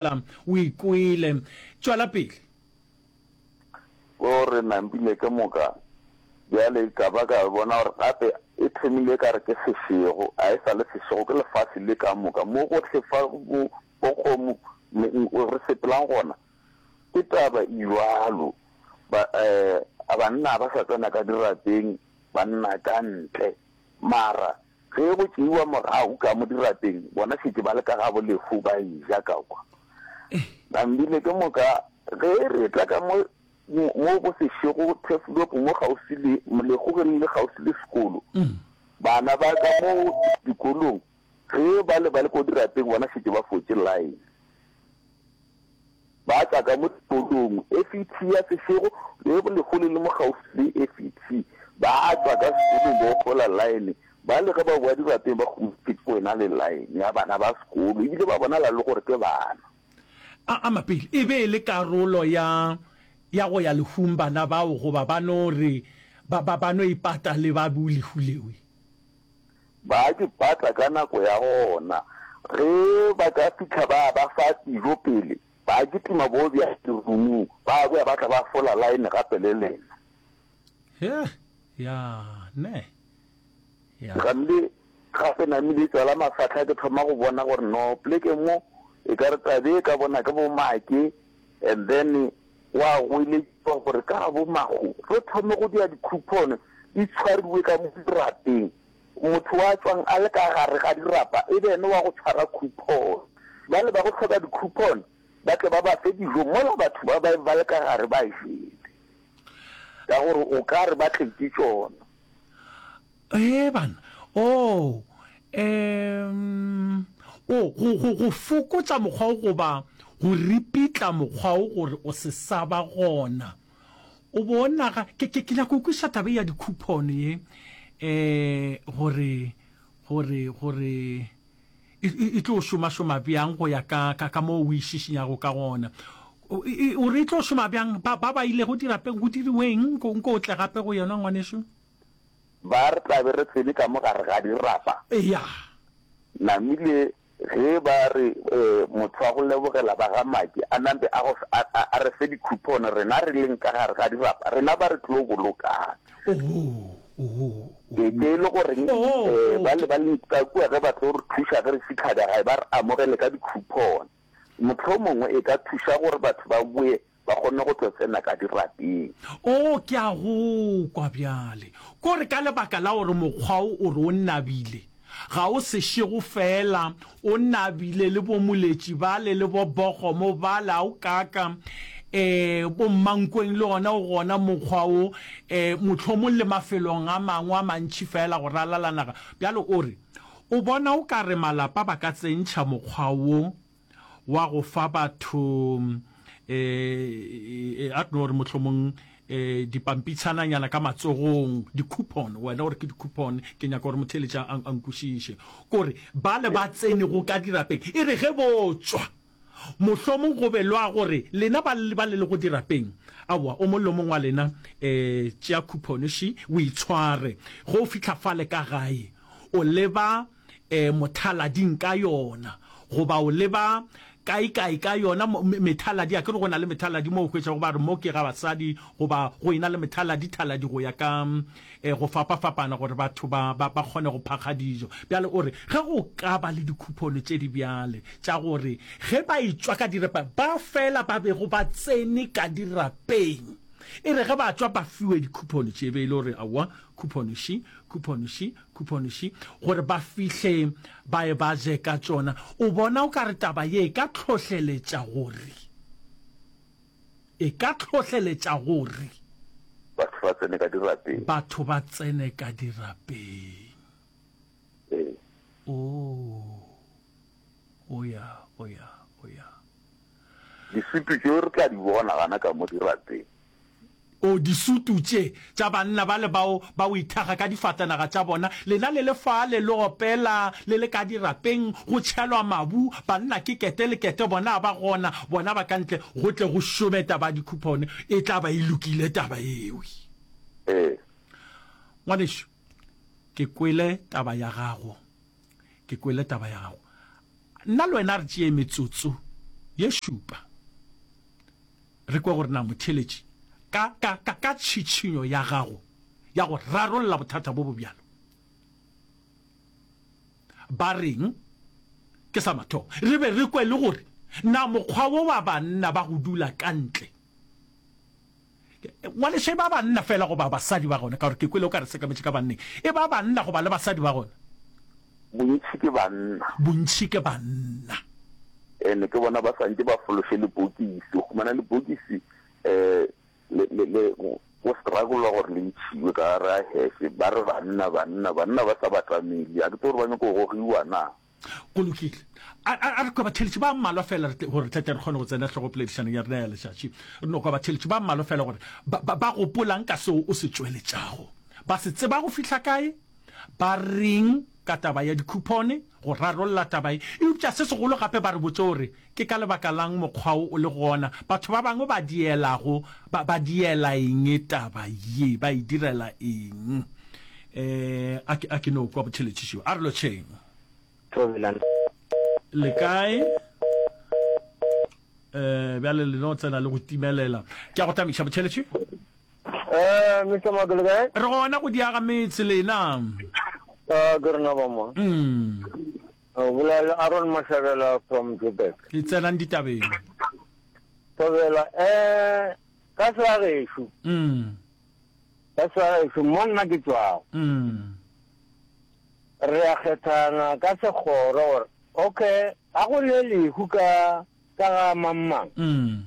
Mabala, o e kwele. Tšwela pele. Ko re nampile ke moka, bjale ka ba ka bona gore gape e thomile e ka re ke sešego, a e sa le sešego, ke lefase le ka moka, mo gohle fa bo, bokgomo le eng o re sepelang gona. Ke taba e bjalo. Ba, eh, banna ga ba sa tsena ka dirapeng, banna ka ntle. Mara. Ge go tšeiwa mogau ka mo dirapeng, bona šetše ba le ka gabo lehu ba eja ka kwa. Nambile, ke moka ge re etla ka mo mo go sešego Turfloop mo kgauswi le lehu ge le le kgauswi le sekolo. Bana ba ka mo dikolong ge ba le ba le ko dirapeng bona šetše ba fotše line. Ba tla ka mo Tolong, FET ya Sešogo, le go lekgole le mo kgaufsi le FET. Ba tla ka sekolong ba ofola line, ba le ge ba boa dirapeng ba kgomotšwe ke wena le line ya bana ba sekolo, e bile ba bonala le gore ke bana. A ama pele e be e le karolo ya ya go ya lehung bana bao goba ba no re ba ba ba no ipata le ba bo lehu lewe. Ba di patla ka nako ya gona. Ge ba ka fihla ba ba fa dijo pele, ba kitima bo bja diruming, ba boya ba tla ba fola line gape le lena. Hee, ya, ne, ya. Gamle gape namile tswala mafahla ke thoma go bona gore no pleke mo e ka re tabe ka bona ke bo make and then Gwa goeletšwa gore ka Labomago re thome go dira dikhupono di tshwariwe ka mo dirapeng, motho wa tšwang a le ka gare ga dirapa e be ene wa go tshwara khupono. Bale ba go hloka dikhupono ba tle ba ba fe dijo mola batho ba ba ba le ka gare ba jele ka gore o ka re ba tletše tšona. Ee, bana. Oo, eemm, o, go, go, go fokotša mokgwa wo goba go ripitla mokgwa wo gore o se sa ba gona. O bo o naga, ke, ke, ke nyaka go kwešiša taba ye ya di-coupon ye, ee, gore, gore, gore e, e, e tlo šomašoma bjang go ya ka, ka, ka moo o e šišinyago ka gona. O, e, o re e tlo šoma bjang? Ba, ba, ba ilego dirapeng go diriweng? Nko, nko o tle gape go yona, ngwanešu. ba re tla be re tsene ka mo gare ga dirapa. Eya. Namile ge ba re motho wa go lebogela ba ga Maki a nampe a go a re fe dikhupone rena re leng ka gare ga dirapa, rena ba re tlo bolokang. Oho, oho, oho. Ee, ke e le goreng ba le ba leng ka kua ge ba tlo re thuša ge re fitlha ka gae ba re amogele ka dikhupone. Mohlomongwe e ka thuša gore batho ba boe ba kgonne go tlo tsena ka dirapeng. Oo, ke a go kwa bjale. Ko re ka lebaka la gore mokgwa wo o re o nabile, ga o sešego feela o nabile le bomoletši bale le bobokgomo bale, a o kaaka? Ee, bommankweng le ona o gona mokgwa wo, ee, mohlomong le mafelong a mangwe a mantši feela go ralala naga. Bjale o re o bona o ka re malapa ba ka tsentšha mokgwa wo. wa go fa batho eh a tlo re mohlomong eh dipampitshananyana ka matsogong di-coupon wena gore ke di-coupon ke nyaka gore motheletša a nkwešiše kore ba le ba tsenego ka dirapeng e re ge botswa mohlomong go be lwa gore lena ba le ba le go dirapeng aowa o mollo mongwe wa lena um tšea coupon še o itshware go fitlha fale ka gae o leba e, mothalaDing ka yona, goba o leba kaekae ka yona, mo, me, methaladi. A ke re go na le methaladi mo o hwetšago ba re mo ke ga basadi, goba go ena le methaladi, thaladi go ya ka e, go fapafapana, gore batho ba, ba, ba kgone go phakga dijo. Bjale o re, ge go ka ba le dikhupono tše di bjale tša gore ge ba etšwa ka dirapeng, ba fela ba bego ba tsene ka dirapeng, e re ge ba tšwa ba fiwe dikhupono tše, e be e le gore aowa, khupono še, khupono še, Khuphonoši gore ba fihle ba e ba je ka tšona. O bona o ka re taba ye e ka tlhohleletša gore e ka tlhohleletša gore. Batho ba tsene ka dirapeng. Batho ba tsene ka dirapeng. Ee. Oo. O ya, o ya, o ya. Disutu tšeo re tla di bona gana ka mo dirapeng. O, disutu tše, tša banna bale bao ba withaga ka difatanaga tša bona, lena le le fale le opela, le le ka dirapeng, go tšhelwa mabu, banna ke kete le kete, bona a ba gona, bona ba ka ntle, go tle go šome taba ya dikhuphone, e tla ba e lokile taba yeo. Ee. Ngwanešu, ke kwele taba ya gago. Ke kwele taba ya gago. Nna le wena re tšee metsotso ye šupa re kwe gore na motheeletši ka, ka, ka, ka tšhitšhinyo ya gago ya go rarolla bothata bo bo bjalo ba reng ke sa mathomo. Re be re kwe le gore na mokgwa wo wa banna ba go dula ka ntle Ngwaneša, e ba banna feela goba basadi ba gona, ka gore ke kwele o ka re sekametše ka banneng. E ba banna goba le basadi ba gona? Bontši ke banna. Bontši ke banna. Ene ke bona ba swantše ba fološe lebokisi, o humana lebokisi le, le, go struggle-wa gore le ntšhiwe ka gare ga heše, ba re banna, banna, banna ba sa batamele, a ke tsebe gore ba nyaka go gogiwa na? Go lokile. A, a, a re kwa batheeletši ba mmalwa fela gore re tletle re kgone go tsena hlogopoledišanong ya rena ya letšatši. Re no kwa batheeletši ba mmalwa fela gore ba, ba, ba gopolang ka seo o se tšweletšago. Ba se tseba go fihla kae? Ba reng ka taba ya dikhupone, go rarolla taba ye? Eupša se segolo gape ba re botše gore Ke ka lebaka la'ng mokgwa wo o le gona? Batho ba bangwe ba dielago ba, ba diela eng taba ye? Ba e direla eng? Eh, a ke, a ke no kwa botheletši šeo. A re lotšheng. Thobelang. Le kae? Eh, bjale le no tsena le go timelela. Ke a go tamiša botheletši. Eh, Mister Mako, le kae? Re gona go diaga metse, lena? Ah, ke rena ba mo. Mm. O bula le Aaron Mahlabela from Joburg. Re tsenang ditabeng. Thobela, eh, ka sa gešo. Mm. Ka sa gešo, mo nna ke tswago. Mm. Re a kgethana ka segoro gore, okay, a go ne lehu ka ka ga mamang. Mm.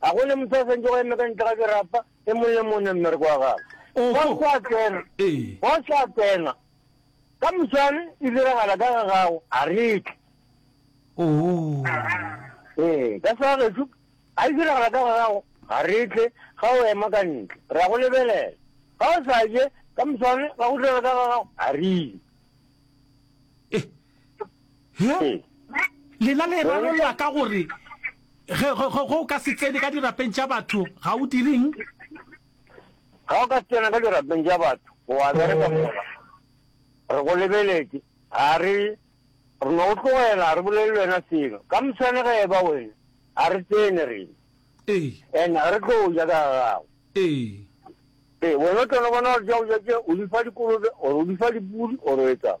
Ga go ne motho a santšego a eme ka ntle ga dirapa, e mong le mone mmereko wa gagwe. Boss a tsena, boss a tsena. Ka moswane, e diragala ka ga gago, a re tle. Ee, ka sa gagetšo, a e diragala ka ga gago, ga re tle, ga o ema ka ntle, re a go lebelela. Ga o sa je, ka moswane, ga go diragala ka ga gago, a re ile. lena le rarolwa ka gore ge o ka se tsene ka dirapeng tša batho ga o direng ga o ka tsena ka dirapeng tša batho wa bereka oh. fela re go lebeletse ga re re no tlogela re bolele le wena selo ka mosane ge eba wena ga re tsene rena ee. and ga re tlo ja ka gago ee. ee wena o tlono bona gore ja o jake o di fa dikolobe ore o di fa dipudi ore o etsang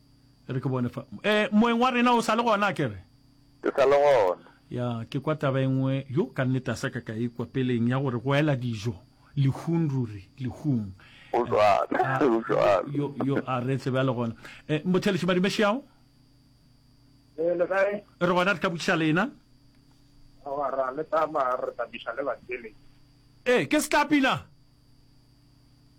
e re ke bone fa e moeng wa rena o sa le gona ke re ke sa le gona ya ke kwa taba engwe yo ka nnete a sa ka ka ikwa e peleng ya gore go ela dijo lehung ruri lehung o jwalo yo yo a re tsebe a le gona e eh, mothelesi madimeši ao eh, re gona re ka botšiša lena ra le tsamaya re tabiša le batele ee ke setlapina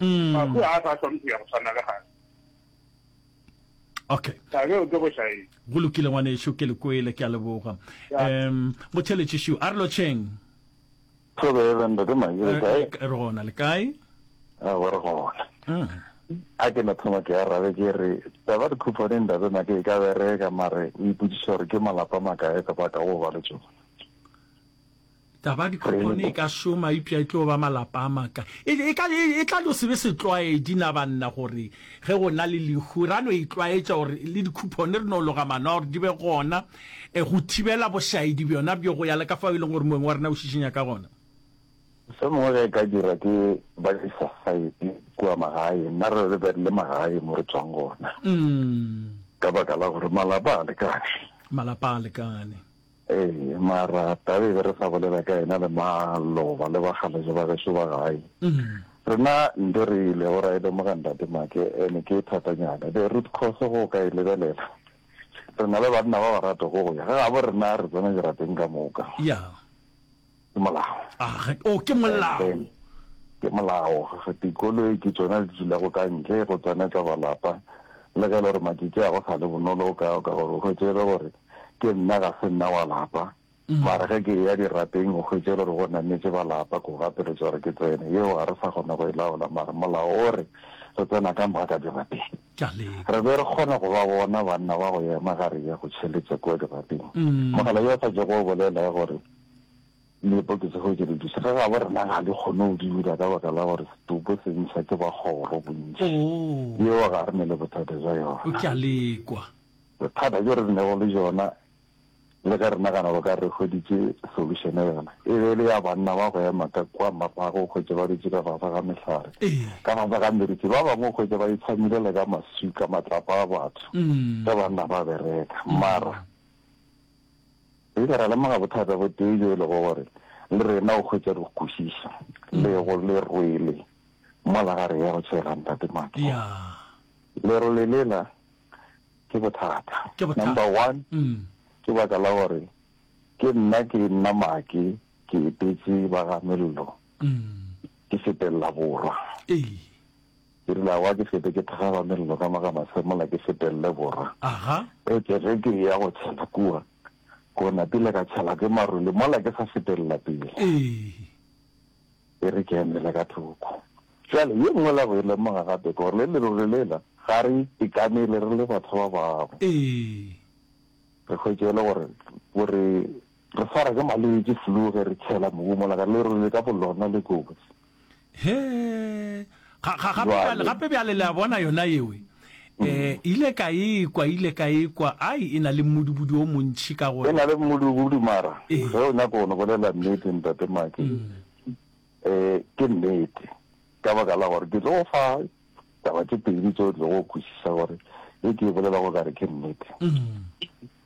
Mahu ga a sa swanne go ya go tshwana le gale. Okay. Thabe o ke go šaeng. Go lokile ngwanešu ke le kwele ke a leboga. Em motheletši shu a re lotšheng. Thabe re ntate Mahi re kae? Eh, re gona le kae? A re gona. Mm. a ke no thoma ke arabe ke re taba di khupane ndate na ke ka bereka mare o iputsisa gore ke malapa makae ka baka go ba le tsone Taba dikgopone e ka šoma eupša e tlo ba malapa a maka. E, e, ka, e, e tla no se be setlwaedi na banna gore ge go na le lehu ra no itlwaetša gore le dikgopone re no loga mano gore di be gona e, go thibela bošaedi bjona bjo go ya le ka fao e leng gore moeng wa rena o šišinya ka gona. Se mongwe ge e ka dirwa ke ba society kua magaeng, nna re re le magae mo re tswang gona mm. ka baka la gore malapa a lekane malapa a lekane Ee, mara taba e be re sa bolela ka yena le maloba le bakgalase ba geso ba gae. Rena nto re ilego ra e lemoga Ntate Make ene ke e thatanyana. The root cause go ka e lebelela, re na le banna ba ba ratago go ya ga gabo rena re tsena dirapeng ka moka. Yeah. Ke molao. Aga, oh, ke molao. Ke molao. Ga dikoloi ke tsona di dulago ka ntle go tsena tsa balapa. Le ge e le gore matšatši a go sa le bonolo o ka ka gore o hwetše e le gore ke nna ga se nna wa lapa. Mm. Mara ge ke ya dirapeng o hwetše e le gore go nametše balapa ko gapeletša gore ke tsene. Yeo ga re sa kgona go e laola mara molao o re re tsena ka moga ka dirapeng. Re be re kgona go ba bona banna ba go ema ga re ya go tšheletša kua dirapeng. Mm. Mogala yo o sa jego o bolela gore Mme poketsego ke re duša ga gabo rena ga di kgone go dira ka baka la gore setopo se ntšha ke ba kgoro bontši. Yeo ga re ne le bothata bja yona. O tla lekwa. Bothata bjo re nego le jona le ge re nagana bo ka re hweditše solution yona e be e le ya banna ba go ema ka kua mapago o hwetše ba dutše ka fase ga mehlare, ka fase ga meriti. Ba bangwe o hwetše ba itshamile le ka maswika, matlapa a batho ge banna ba bereka. Mara. Re ile ra lemoga bothata bo tee bjo e lego gore le rena o hwetša re kwešiša lego le rwele mola ga re ya go tšhela Ntate Maki. Lerole lela ke bothata. Number one, ke baka la gore ke nna ke nna Maki ke etetse ba ga Mello ke sepelela borwa. Ke rile, Aowa, ke fete ke thakgaba mello ka mo ga mase mola ke fetelele borwa. Etšwe ge ke eya go tšhela kua, go napile ka tšhelwa ke maruli mola ke sa fetelela pele. E re ke emele ka thoko. Bjale, ye nngwe la go e lemoga gape ke gore le leruri lela ga re itekamele re le batho ba bangwe. Re hwetše e le gore bo re Re swara ke malwetši, flu, ge re tšhela mobu mola ka lerole le ka bolona le kotsi. He, ga, ga, gape bjale, Jwale. gape bjale, le a bona, yona yeo e ile ka e kwa, ile ka e kwa, ai, e na le mmudubudi wo montši, ka E gore. na le mmudubudi, mara Ee. ge o nyaka go no bolela nnete, Ntate Maki, eh, ke nnete, ka baka la gore ke tlo go fa taba tše pedi tše o tlego go kwešiša gore e ke e bolelago o ka re ke nnete.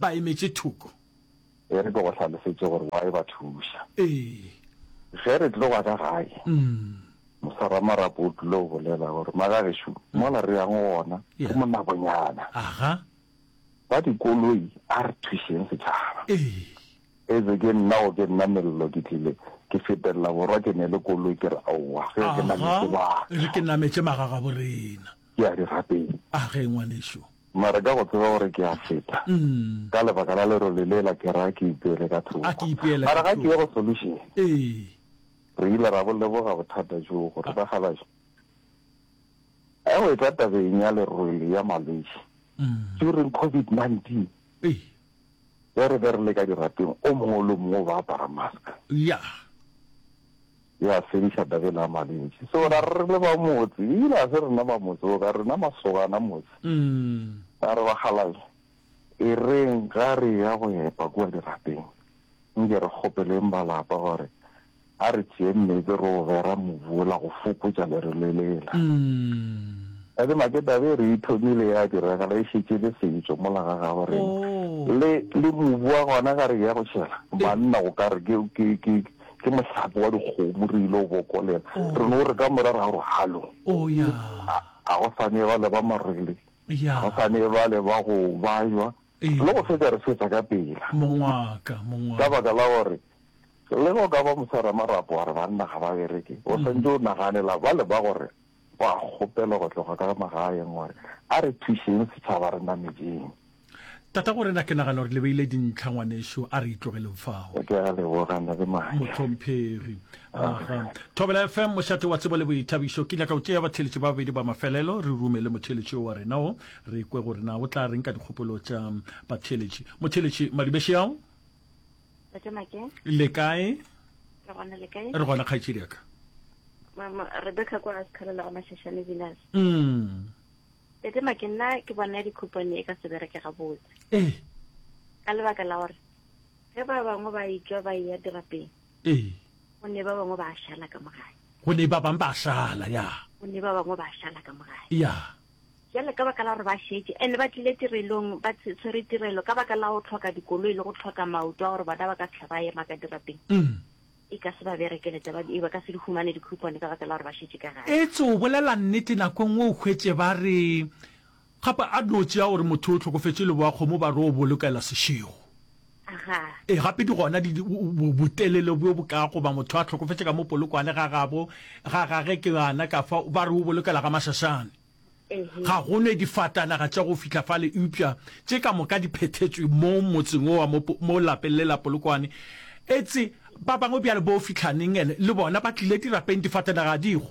ba emetše thoko. E re ke go hlalosetše gore wa e ba thuša. Ee. Ge re tloga ka gae, moswaramarapo o tlile go bolela gore, Magagešo, mola re yang gona ke monabonyana. Aha. Ba dikoloi, a re thušeng setšhaba. Ee. Etse ke nna go ke nna Mello, ke tlile ke fetelela borwa ke ne le koloi, ke re aowa, ge ke nametše batho. Aha, e re ke nametše magagaborena. ke a di rapela. A ge, ngwanešu? Mara ka go tseba gore ke a feta, ka lebaka la lerole lela, ke ra ke ipeele ka thoko. A ke ipeele ka thoko. Mara ga ke ye go solution. Ee. Re ile ra bo leboga bothata joo, gore ba galaša. Ge o etla tabeng ya lerole ya malwetši, during COVID-19, ge re be re le ka dirapeng, o mongwe le o mongwe o ba apara mask. Ya. e a fediša Davele a mantši. So ra re re le ba motse, ebile ga se rena ba motse o, ka rena masogana motse. Ra re, Bakgalabje, e reng ga re eya go epa kua dirapeng, nke re kgopeleng ba lapa gore a re tšeeng meetse re o bera mobu wola go fokotša lerole lela. Tate Maketabe e re e thomile ya diragala e šetše e le setšo mola ga gabo rena. Le, le mobu wa gona ga re eya go tšhela, banna o ka re ke, ke, ke, ke mohlape wa dikgomo re ile go bokolela re no re ka mora ra gore halo oh ya ga go sane ba le ba marele ya go sane ba le ba go bajwa Ee. le go fetsa re fetsa ka pela mongwaka ka mongwaka baka la gore le go ka ba mosara marapo wa re banna ga ba bereke o santse o naganela ba le ba gore Gwa kgopelwa go tloga ka magaeng gore a re thušeng setšhaba re namedjeng. Tatagorena, ke nagana gore le beile dintlha ngwanešu, a re itlogeleng fao. Ke a leboga, na le maatla. Mohlomphegi, Aga. Thobela FM, mošate wa tsebo le boithabišo. Ke nyaka go tšea batheeletši ba babedi ba mafelelo, re rume le motheeletši yo wa rena wo, re kwe gore na o tla reng ka dikgopolo tša batheeletši. Motheeletši Madibeshiao. Tate Make. Le kae? Re gona le kae? Re gona kgaitšedi ka. Mama Rebecca kwa Askhalela go Mashashane Venus. Mm. Tate Make nna ke bona di coupon e ka se bereke ga botse. Eh. Ka lebaka la gore ge ba bangwe ba itswa ba ya dirapeng. Eh. Go ne ba bangwe ba shala ka mogae. Go ne ba bangwe ba shala ya. Go ne ba bangwe ba shala ka mogae. Ya. Bjale ka baka la gore ba šetše and ba tlile tirelong ba tshwere tirelo ka baka la go tlhoka dikoloi le go tlhoka maoto a gore bona ba ka fihla ba ema ka dirapeng, e ka se ba berekele taba e, ba ka se di humane di-coupon ka baka la gore ba šetše ka gae. Etse o bolela nnete nako e nngwe o hwetše ba re gape a no tšea gore motho o hlokofetše leboa kgomo ba re o bolokela sešego. Ga. E, gape di gona di, botelele bjo bo ka goba motho a tlhokofetše ka mo polokwane ga gabo, ga gage ke ana ka fa, ba re o bolokela ga Masasane. Ga go ne difatanaga tša go fihla fale, eupša tše ka moka di phethetswe mo motseng owa mo, mo lapeng le la polokwane. Etse ba bangwe bjale bo Fitlhaneng ene le bona ba tlile dirapeng, difatanaga ga di go.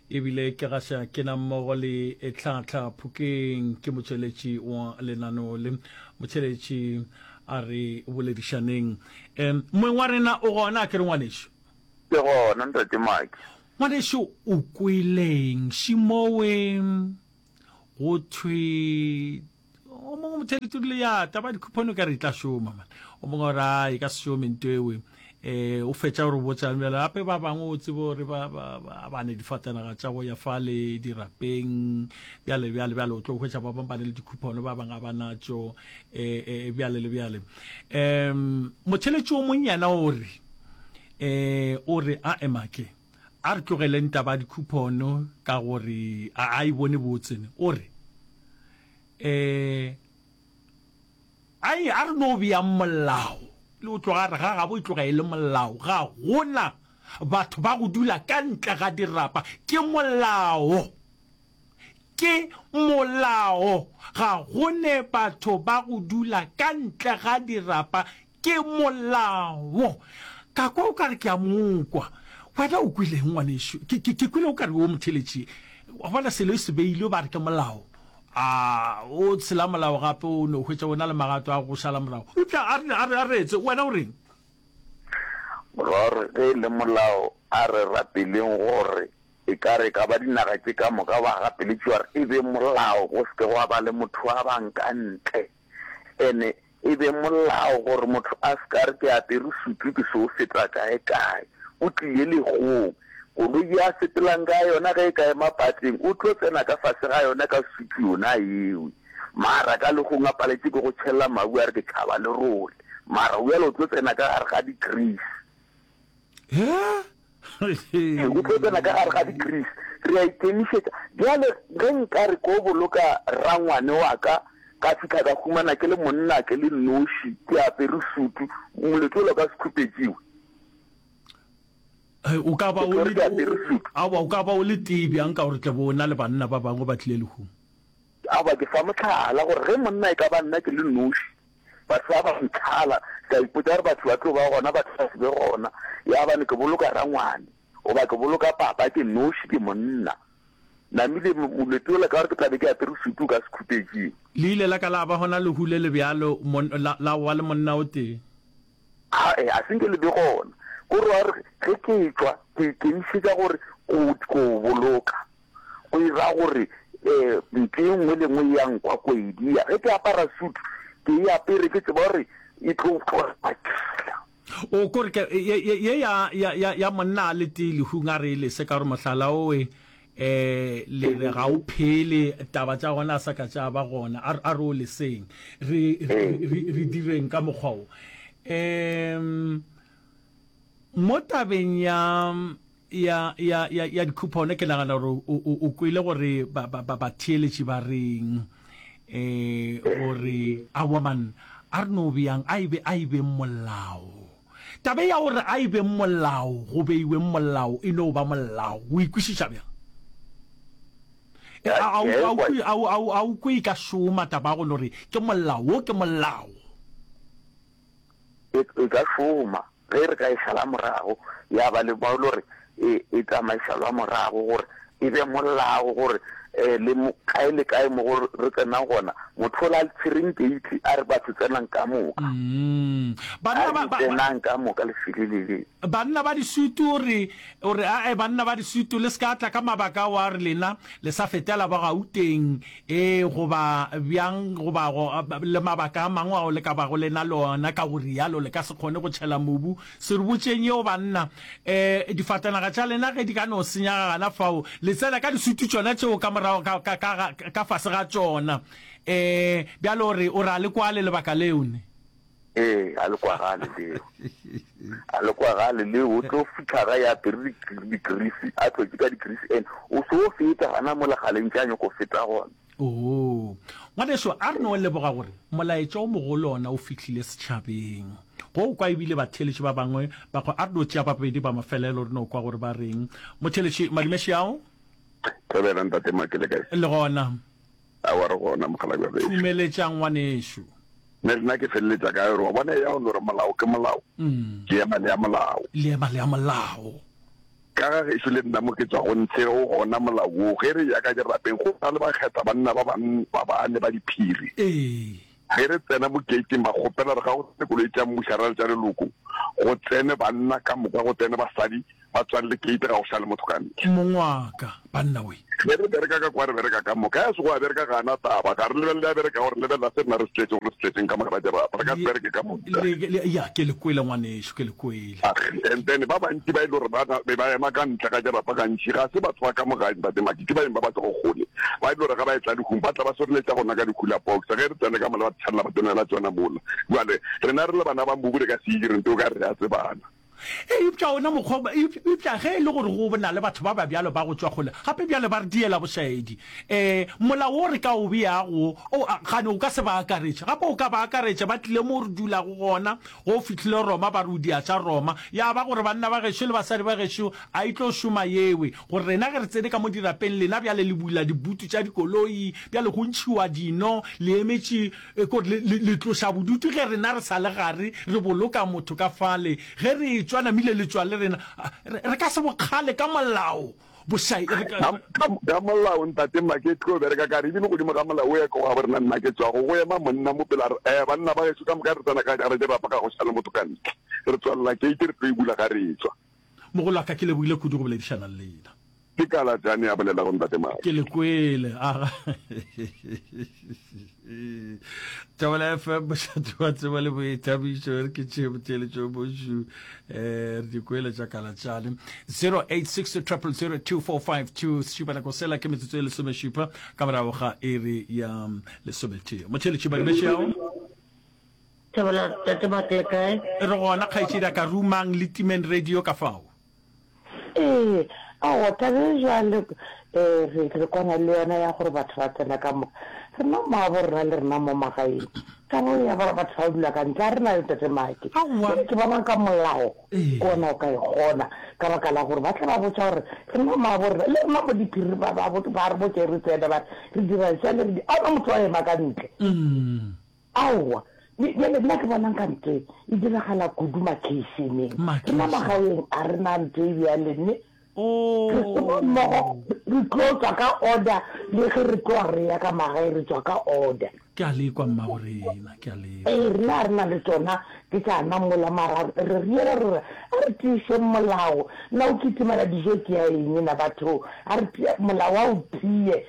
E bile ke gaša ke na mmogo le Tlhahla Phokeng, ke motšweletši wa lenaneo le. Motšweletši, A re boledišaneng. Em, moeng wa rena o gona ke re ngwanešu? Ke gona, Ntate Maki. Ngwanešu, o kwele'ng? Šimowe go thwe o mongwe mothedi turile ya taba dikhuphone o ka re e tla šoma man o mongwe gore a e ka se šome nto ewe um o fetša gore botsa bjale gape ba bangwe o tsebe gore ba ne difatanaga tša go ya fa le dirapeng bjale bjale bjale o tlo hwetša ba bangwe ba ne le dikhuphone ba bangwe ga ba natšo um eh, eh, bjale le bjale um motheletši o mong yena o re um o re a emake A re tlogeleng taba ya dikhupono ka gore a a e bone botse ne. O re, um Ai, a re no beyang molao, le go tloga a re ga gabo e tloga e le molao, ga go na batho ba go dula ka ntle ga dirapa. Ke molao. Ke molao. Ga go ne batho ba go dula ka ntle ga dirapa. Ke molao. Ka kwa o ka re ke a mo kwa. Wena o kwileng, ngwanešu? Ke, ke, ke kwile o ka re o motheletši. Wa bona, selo e se beilwe, ba re ke molao. A o tshela molao gape, o no hwetša o na le magato a go šala morago. Eupša a re, a re, a re etse. Wena o reng? Morwarre, ge e le molao, a re rapeleng gore e ka re e ka ba dinaga tše ka moka ba gapeletšwa gore e be molao go se ke gwa ba le motho wa ba nka ntle. Ene E be molao gore motho a se ka re ke apere sutu ke so feta kae kae. O tlile legong, koloi ye a sepelang ka yona ge e ka ema pateng o tlo tsena ka fase ga yona ka sutu yona yewe. Mara ka legong a paletše ke go tšhella mabu a re ke tšhaba lerole. Mara o yalo o tlo tsena ka gare ga di grease. o tlo tsena ka gare ga dikrisi re a ikemišetša bjale ge nka re ko boloka rangwane wa ka ka fitlha ka humana ke le monna ke le noši ke apere sutu moletse o lo ka sekhupetšiwe o ka ba o le tee bjang ka gore tle bo o na le banna ba bangwe ba tlile lehung Aowa, ke fa mohlala gore ge monna e ka ba nna ke le noši, batho ba ba ntlhala, ke a ipotsa gore batho ba tlo ba gona, batho ba se be gona, ya bane ke boloka rangwane goba ke boloka papa ke noši, ke monna. Namile, Moleti ola, ka gore ke tla be ke apere sutu ka sekhupetšing. Le ile la ka la ba gona lehu le le bjalo, mon, la, la wa le monna o tee? Ae, a se nke le be gona. Ko re wa gore ge ke etšwa, ke ikemišetša gore, go, go o boloka. go e ra gore um mpshe e nngwe le nngwe e ya nkwa ko e dia. Ge ke apara suit, ke e apere ke tseba gore e tlo tloga makila. O ko re ke, ye, ye, ye ya, ya, ya, ya monna a le tee lehung a re e lese, ka gore mohlala owe, um le re ga o phele, taba tša gona a sa ka tša ba gona, a, a re o leseng. Re, re, re, re direng ka mokgwa wo. Um mo tabeng ya, ya, ya, ya, ya dikhupone, ke nagana gore o, o, o kwele gore ba, ba, ba, batheeletši ba reng um gore awaman a re no bjang a ebe a ibeng molao tabe ya gore a ibeng molao go beiweng molao e no ba molao o ikwešiša bjang a o kwe ka šoma taba go no re ke molao wo ke molao e, e ka šoma ge re ka e šala morago, ya ba le bao lore e, e tsamaišalwa morago gore e be molao gore eh, le mo, kae le kae mo re tsenang gona motho o la le tshwereng keiti a re batho tsenang ka moka mm. banna ba, ba, tsenang ka moka le filelele banna ba disutu o re o re ae banna ba disutu le se ka tla ka mabaka wa re lena le sa fetela ba gauteng Ee, goba bjang, goba go, le mabaka a mangwe ao le ka bago le na le ona, ka go rialo le ka se kgone go tšhela mobu. Se re botšeng yeo, banna. E, difatanaga tša lena ge di ka no senyaga gana fao, le tsena ka disutu tšona tšeo ka morago, ka, ka, ka, ka fase ga tšona. E, bjale o re, o re a le kwale lebaka leo ne. Ee, a le kwagale leo. A le kwagale leo, o tlo fitlha ga ya apere dikrisi, a tlotse ka dikrisi, and o se o feta gana mo legaleng tša nyoko feta gona. Oo, ngwaneso, a re no leboga gore molaetša o mogolo ona o fihlile setšhabeng. Go kwa ebile batheeletši ba bangwe ba go, a re no tšea ba babedi ba mafelelo re no kwa gore ba reng. Motheeletši Madume Xiao? Thobela ntate Maki, le kae? Le gona. Aowa, re gona, mokgalabje wa gešo. Thumeletša, ngwanešu. Mme nna ke feleletša kae gore wa bona eya o no re molao ke molao? Ke ema le ya molao. Le ema le ya molao. Ka ga gešo le nna mo ke tšwago ntshe o gona molao woo. Ge re eya ka dirapeng go na le bakgetha banna ba bane ba diphiri. Ee. Ge re tsena mo gate-ing ba kgopela re ga go tsene koloi tša mmuša ra re tša leloko go tsene banna ka moka go tsene basadi ba tswalle gate ga go sa le motho ka ntle. Mongwaka banna we. Ge re bereka ka kwa re bereka ka moka ya sego a bereka ga ana taba ga re lebelele a bereka gore lebelela se rena re se tletšego re se tletšeng ka moka ba jara re ka se bereke ka moka. Ya ke le kwele ngwanešu ke le kwele. And then ba bantši ba e le gore ba be ba ema ka ntle ga dirapa gantši ga se batho ba ka mo gae, Ntate Maki, ke baeng ba ba tlogo kgole ba e le gore ge ba etla lehung ba tla ba soreletša gona ka di-cooler box ge re tsene ka mola ba tshalla ba tsenela tšona mola. Bjale rena re le bana ba mobu re ka se e dire nto o ka re re a tsebana. Eupša ona mokgwa o, eupša ge e le gore go na le batho ba ba bjalo ba go tšwa kgole gape bjale ba re diela bošaedi, ee, molao wo re ka o beago o, gane o ka se ba akaretše. Gape o ka ba akaretša ba tlile moo re dulago gona Go fihlile Roma ba re o diatša Roma. Ya ba gore banna ba gešo le basadi ba gešo a e tlo šoma yewe. Gore rena ge re tsene ka mo dirapeng lena bjale le bula dibutu tša dikoloi bjale go ntšhiwa dino le emetše kore le, le, le tloša bodutu ge rena re sa le gare re boloka motho ka fale ge re etšwa namile le tšwa le rena re, re ka se bokgale ka molao. bošai e re ka ka molao ntate nna ke tlo bereka ka re ebile godimo ga molao o ya ko ga borena nna ke tswago go ema monna mo pela re eh banna ba geso ka moka re tsena ka jara ke rapa ka go šale motho ka ntle re tswalela ke ke re tlo e bula ga re tswa mogolo ka ke lebogile kudu go boledišana le lena ke kala jane ya bolela go ntate mao ke le kwele aga tabela fm mošate wa tseba le boithabišo re ke tšee boteeletšo bošu um eh, re dikoele tša kalatšane 0860002452 sešupanako sela ke metsotso e lesomešupa ka morago ga iri ya mm, lesometee motheeletši badimešeago re gona kgaetšedi a ka rumang le timeng radio ka fao Ee, aowa, taba e bjalo re re kwana le yona ya gore batho ba tsena ka moka. Rena mmaabo rena le rena mo magaeng, taba eo ya gore batho ba dula ka ntle, ga re na le Ntate Maake. Aowa. Ke bona ka molao Ee. ke ona o ka e kgona ka baka la gore ba tla ba botša gore rena mmaabo rena le rena mo diphiri ba ba bo- ba re botša e re tsena ba re re dira jale re di a hona motho wa ema ka ntle. Aowa, bj bjale nna ke bona nka nto e diragala kudu makeišeneng. Rena magaeng ga re na nto e bjale, mme re šoma mmogo, re tlo tšwa ka order le ge re tloga re ya ka magae, re tšwa ka order. Ke a lekwa, mmagorena, ke a lekwa. Ee, rena ga re na le tšona ke tšana mola, mara re riela re re a re tiišeng molao. Na o kitimela dijo ke ya eng na batho? A re tie molao, a o tie.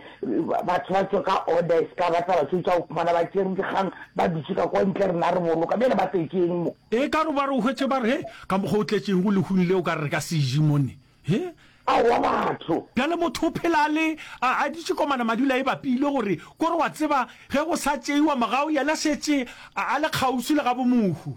Batho ba tšwe ka order e seka ba tla ba tšwetša go khumana ba tšere dikgang ba dutše ka kwa ntle rena re boloka bjale ba tletšeng mo. E ka re ba re o hwetše ba re he ka mokgwa o tletšeng go lehung le o ka re re ka se je mone he. Aowa batho. Bjale motho o phela a le a a dutše komana madula e bapile gore ko re wa tseba ge go sa tšeiwa mogau yena šetše a le kgauswi le ga bomohu.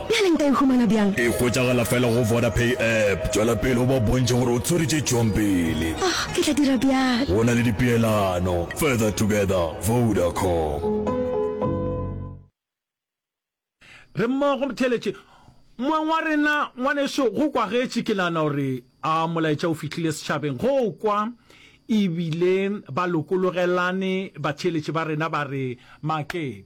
Bjale nka e humana bjang? E hwetšagala fela go Vodapay app. Tšwela pele o ba bontšhe gore o tswere tše tšwang pele. Oh, ke tla dira bjalo. Go na le dipeelano. Further together, Vodacom. Re mmogo motheeletše. Moeng wa rena, ngwaneso, go kwagetše. Ke nagana gore a molaetša o fihlile setšhabeng. Go kwa e bile ba lokologelane, batheeletše ba rena ba re makepe.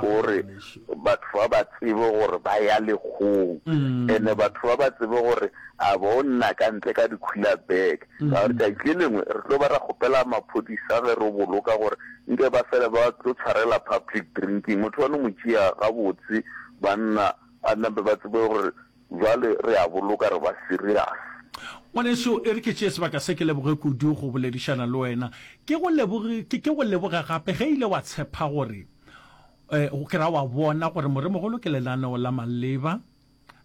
gore batho ba ba tsebe gore ba ya lekgong ene batho ba ba tsebe gore a bo nna ka ntle ka dikhula bag ka gore tšatši lengwe re tlo ba ra kgopela maphodisa ge re boloka gore nke ba fele ba tlo tshwarela public drinking motho wa no mo tšea gabotse banna a nampe ba tsebe gore Bjale re a boloka re ba serious. Ngwaneso, e re ke tšee sebaka se ke leboge kudu go boledišana le wena. Ke go leboge, ke, ke go leboge gape ge ile wa tshepa gore, eh, ke ra wa bona gore Moremogolo ke lenaneo la maleba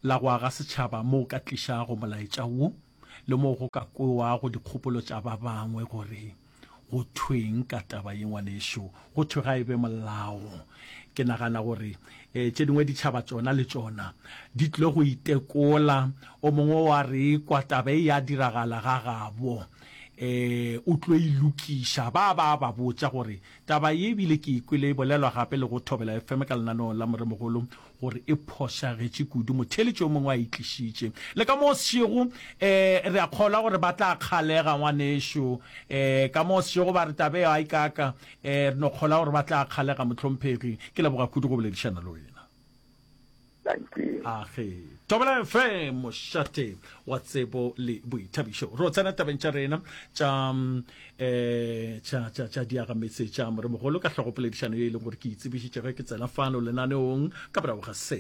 la go aga setšhaba moo o ka tlišago molaetša wo. le mo go ka kwewago dikgopolo tša ba bangwe gore go thweng ka taba ye ngwanešo go thwe ga e be molao ke nagana gore um tše dingwe ditšhaba tsona le tsona di tlile go itekola o mongwe wa re kwa taba e ya diragala ga gabo eh o tlo ilokiša ba ba ba botša gore taba ye ebile ke ikwele e bolelwa gape le go thobela fm ka lenaneo la moremogolo gore e phošagetše kudu, motheeletši yo mongwe a e tlišitše. Le ka mo o sešego, um, re a kgolwa gore ba tla kgalega, ngwanešu. Um, ka mo o sešego ba re, Taba eo a e kaaka. Um, re no kgolwa gore ba tla kgalega, mohlomphegi. Ke leboga kudu go boledišana le wena. Age Thobela FM, mošate wa tsebo le boithabišo. Ro tsena tabeng tša rena tša mm, eh tša tša tša diaga metse tša moremogolo ka hlogopoledišano ye e leng gore ke itsebišitše ge ke tsena fano lenaneong ka morago ga se